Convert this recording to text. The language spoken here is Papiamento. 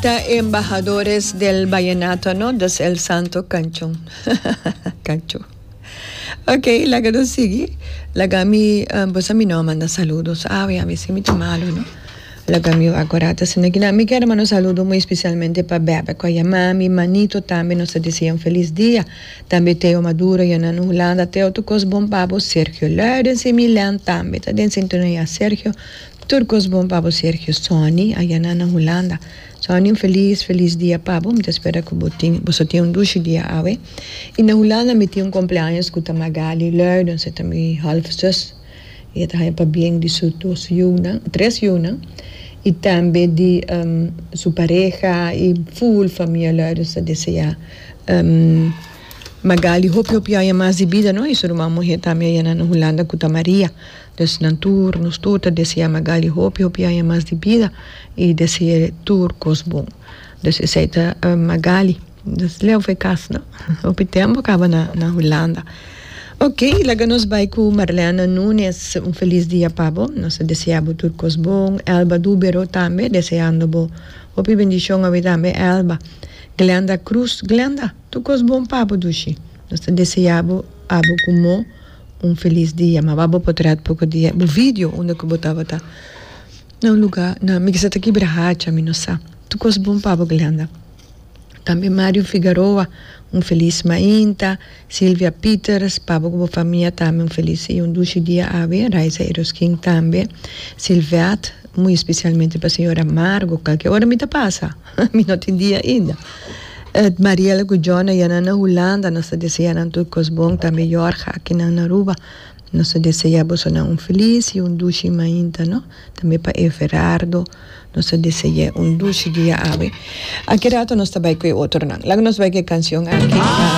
Ta e embahadores del vallenato no dus el santo canchon canchon ok laga nos sigui laga mi uh, bo sa mi no a manda saludos awe a misi mi ta malo no laga mi wak ora ta sinda kina mi ker manda un saludo muy especialmente pa bèbè cu a yama mi manito tambe nos ta desea un feliz dia tambe Teo Maduro y Hernan Hulanda Teo tu cos bon pa bo Sergio Luijden si mi Len tambe ta den sintonia Sergio Tur cos bon pa bo Sergio Sonny ayana na Hulanda Sonny un feliz feliz dia pa bo mi ta spera cu bo tin boso tin un dushi dia awe y na Hulanda mi tin un compleaños cu ta Magali Luijden se ta mi half zus y e ta haya pabien di su dos yunan tres yunan y tambe di su pareha y full famia Luijden ta desea Magali hopi hopi aya mas di bida no y su ruman muhe tambe ayana na Hulanda cu ta Maria Pues nan tur, nos tur ta deseá Magali hopi hopi aña mas di bida i dese'é tur kos bon. Pues esei ta Magali. Nos leu fe kas no. Hopi tempu a kaba na Hulanda. Ok, laga nos bai ku Marlène Nunes. Un felis dia pa bo. Nos ta deseá bo tur kos bon. Elba Dubero tambe deseando bo hopi bendishon awe tambe Elba. Glenda Cruz, Glenda, tur kos bon pa bo dushi. Nos ta deseá bo abo ku mó un felis dia ma aba bo potret poko dia bo video unda ku bo tabata na un luga na mi kisa ta kibra hacha mi no sa tur kos bon pa bo Glenda tambe Mario Figaroa un felis mainta Silvia Peters pa bo ku bo famia tambe un felis i un dushi dia awe Raiza Eroskin tambe Silvette muy especialmente pa señora Margo kalke ora mi ta pasa. Mi no tin dia ainda. Mariela cu Jona ya nan na Hulanda, nos ta desea nan tur cos bon, tambe Jorge akinan na Aruba. Nos ta desea bosonan un feliz y un dushi mainta, no? Tambe pa Everardo nos ta deseae un dushi diaAwe aki rato nos ta bay cu e otronan. Laga nos bay cu e cancion aki.